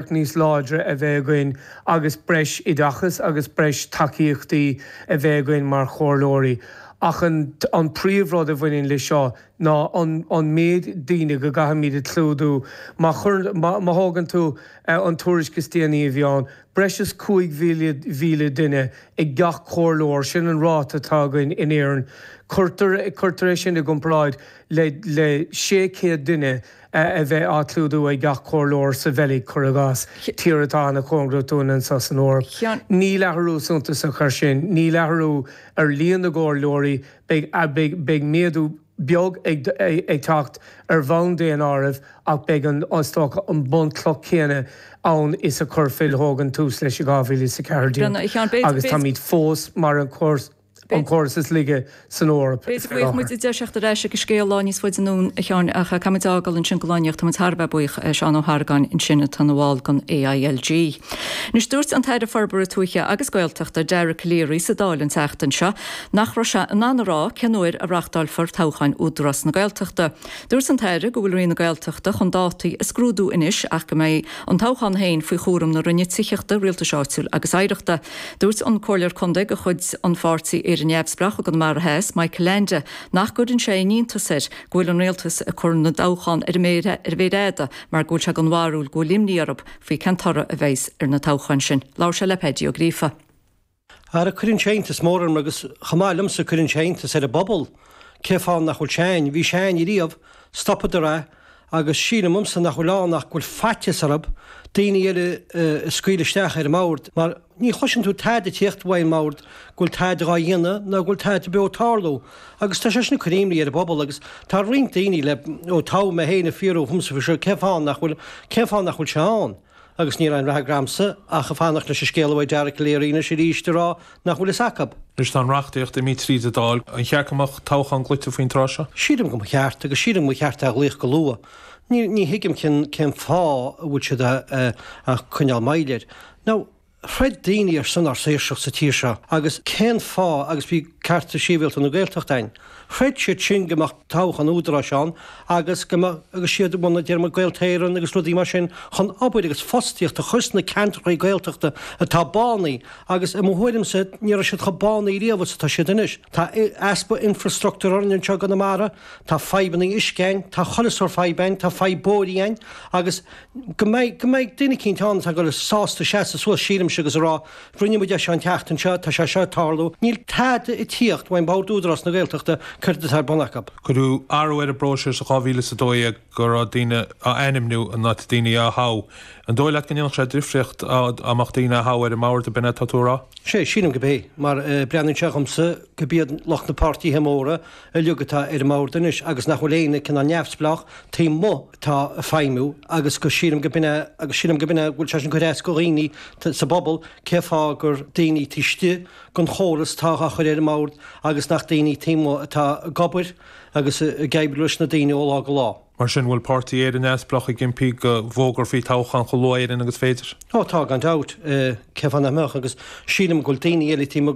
bhealach níos láidre a bheith againn agus breis oideachais agus breis tacaíochtaí a bheith againn mar chomhairleoirí. Ach an príomhrud a bhaineann le seo ná an méid daoine go gcaithfimid a clúdú. Má thógann tú an tuairisc is déanaí a bhí ann, breis is 5,000 duine ag gach comhairleoir, sin an ráta atá againn in Éirinn. Cuirtear é sin i gcomparáid le 600 duine a bheith á clúdú ag gach comhairleoir sa Bheilg, cuir i gcás, tír atá an-chóngarach dúinn anseo san Eoraip. Níl athrú suntasach air sin. Níl athrú ar líon na gcomhairleoirí, beidh méadú beag ag teacht ar bhonn daonáirimh ach beidh an stocaireacht, an bhunchloch chéanna ann is a chuir Phil Hogan tús leis in 2014 agus táimid fós mar an an córas is laige san Eoraip faoi láthair. Bhuel, déarfaidh muid tar ar ais ag an scéal lá níos faide anonn a Sheáin ach caithfimid é a fhágáil ansin go lá-íoctha. Táimid thar a bheith buíoch de Sheán Ó hArgáin ansin atá ina bhall den AILG. Anois, dúirt an tAire Forbartha Tuaithe agus Gaeltachta, Dara Calleary sa Dáil an tseachtain seo nach raibh sé in ann a rá cén uair a reáchtálfar toghcháin Údarás na Gaeltachta. Dúirt an tAire go bhfuil Roinn na Gaeltachta chun dátaí a scrúdú anois ach go mbeidh An toghchán féin faoi chúram na Roinne Tithíochta, Rialtais Áitiúil agus Oidhreachta. Dúirt an Comhairleoir Contae de chuid an Pháirtí Éire Neamhspleách i gConamara Theas, Michael Leainde, nach gcuireann sé aon iontas air go bhfuil an Rialtas ag cur na dtoghchán ar an méar fhada mar go bhfuil sé den bharúil go bhfuil imní orthu faoi cén toradh a bheas ar na toghcháin sin. Labhair sé le Peaidí Ó Gríofa. Ara cuireann sé iontas mór orm, agus chomh maith liomsa, cuireann sé iontas ar an bpobal, cén fáth nach bhfuil sé ann, bhí sé ann ariamh, stopadar é, agus sílimse nach bhfuil ann ach go bhfuil faitíos orab daoiní eile a scaoil isteach ar an mbord, mar ní chloiseann tú tada ag tíocht uaidh an mbord go bhfuil tada dhá dhéanamh ná go bhfuil tada beo ag tarlú, agus tá sé sin ag cur imní ar an bpobal, agus tá roinnt daoiní le, ó toghadh mé féin a' fiafraí dhíomsa faoi seo, cén fáth nach bhfuil, cén fáth nach bhfuil sé ann? Agus níl aon fhreagra agamsa ach ag fanacht leis an scéal uaidh Dara Calleary anois arís ag rá nach bhfuil fhios acu. Anois tá an reachtaíocht imithe tríd an Dáil, ar cheart go mbeadh toghchán glaoite faoin tráth seo? Sílim go mba cheart, agus sílim go mba cheart é a ghlaoch go luath. Ní thuigim cén fáth a bhfuil siad ag coinneáil moill air. Now, throid daoine ar son ár saoirseacht sa tír seo agus cén fáth agus bhí Cearta Síbhialta na Gaeltacht ann. Throid siad sin go mbeadh toghchán údaráis ann agus go mbeadh agus is iad a bhunaigh déarfainn Gaeltarra Éireann agus rudaí mar sin chun obair agus fostaíocht a chur sna ceantrachaí Gaeltachta atá bánaithe agus i mo thuairimse ní raibh siad chomh bánaithe riamh is atá siad anois. Tá easpa infrastructúr orainn anseo i gConamara, tá fadhbanna uisce ann, tá chuile shórt fadhb ann, tá fadhb bóithrí ann agus go mbeidh, go mbeidh duine eicínt ann atá ag goil, sásta seasamh suas, sílimse, agus a rá, rinne muid é seo an tseachtain seo, tá sé seo ag tarlú, níl tada ag tíocht ó, bord Údarás na Gaeltachta, céard atá ar bun acu? Cuireadh athrú ar an bpróiseas in 2012 go raibh daoine á ainmniú in áit daoine á thoghadh. An dóigh leat go ndéanfadh sé difríocht dá mbeadh daoine á thoghadh ar an mbord, ab in é atá tú ag rá? Sé, sílim gob é, mar breathnaíonn sé dhomsa go b'iad lucht na páirtithe móra uilig atá ar an mbord anois agus nach bhfuil aon cineál neamhspleách taobh amuigh atá ag feidhmiú agus go sílim go b'in é agus sílim go b'in é go bhfuil sé sin ag cur as go dhaoine sa bpobal cé fáth gur daoine taobh istigh gon chóras atá á chur ar an mbord agus nach daoine taobh amuigh atá ag obair agus ag oibriú leis na daoine ó lá go lá. Mar sin, bhfuil Páirtí Éire Neamhspleách ag impí go bhfógrófaí toghchán chomh luath in Éirinn agus is féidir? Ó tá, gan dabht. Cén fáth nach mbeadh? Agus sílim go bhfuil daoine eile taobh amuigh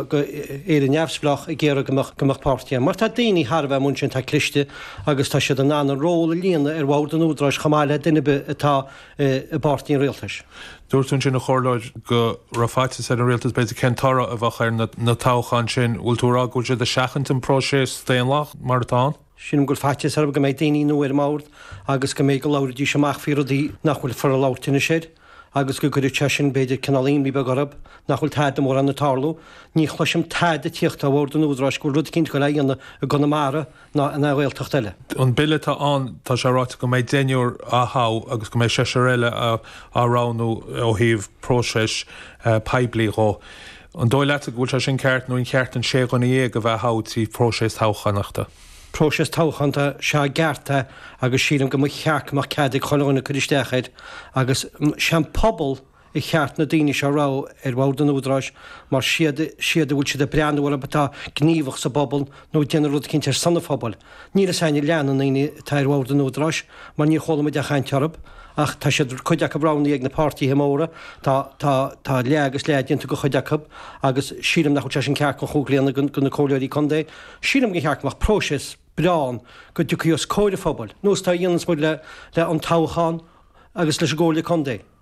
de Éire Neamhspleách ag iarraidh go mbeadh páirtí ann. Mar tá daoine taobh amuigh ansin atá cliste agus tá siad in ann a ról a líonadh ar bhord an Údaráis chomh maith le duine ar bith atá i bpáirtí an Rialtais. Dúirt tú ansin an Comhairleoir go raibh faitíos ar an Rialtas b'fhéidir cén toradh a bheadh ar na toghcháin sin. Bhfuil tú a rá go bhfuil siad ag seachaint an próiseas daonlathach mar atá ann? Sílim go bhfuil faitíos orthu go mbeidh daoine nua ar an mbord agus go mbeidh go labhraídís amach faoi rudaí nach bhfuil ag fáil labhairt anois air agus go gcuirfidh sé sin b'fhéidir cineál imní beag orthu nach bhfuil tada mórán ag tarlú. Ní chloisim tada ag tíocht ó bhord an Údaráis go bhfuil rud eicínt ag goil a dhéanamh i gConamara ná in aon Ghaeltacht eile. An Bille atá ann, tá sé ráite go mbeidh deichniúr á thoghadh agus go mbeidh seisear eile á roghnú ó thaobh próiseas poiblí dhó. An dóigh leatsa go bhfuil sé sin ceart nó ar cheart an sé dhuine dhéag a bheith á thoghadh trí phróiseas toghchánaíochta? Próiseas toghchánta is ea ba cheart é agus sílim go mba cheart go mbeadh cead ag chuile dhuine cur isteach air agus is é an pobal ba cheart na daoine seo a roghnú ar bhord an Údaráis mar is iad siad a bhfuil siad ag breathnú orthu atá gníomhach sa bpobal nó ag déanamh rud eicínt ar son an phobail. Níl a fhios againn a leath de na daoine atá ar bhord an Údaráis mar níor chuala muid aon chaint orthu, ach tá siad, cuid acu, roghnaithe ag na páirtithe móra, tá, tá, tá leath agus leath déanta de chuid acu agus sílim nach bhfuil sé sin ceart gan chumhacht a ligean go, go na comhairleoirí contae. Sílim gur cheart go mbeadh próiseas breá ann go dtiocfaí os comhair an phobail, nós atá a dhéananns muid le, le an toghchán agus leis an gcomhairle contae.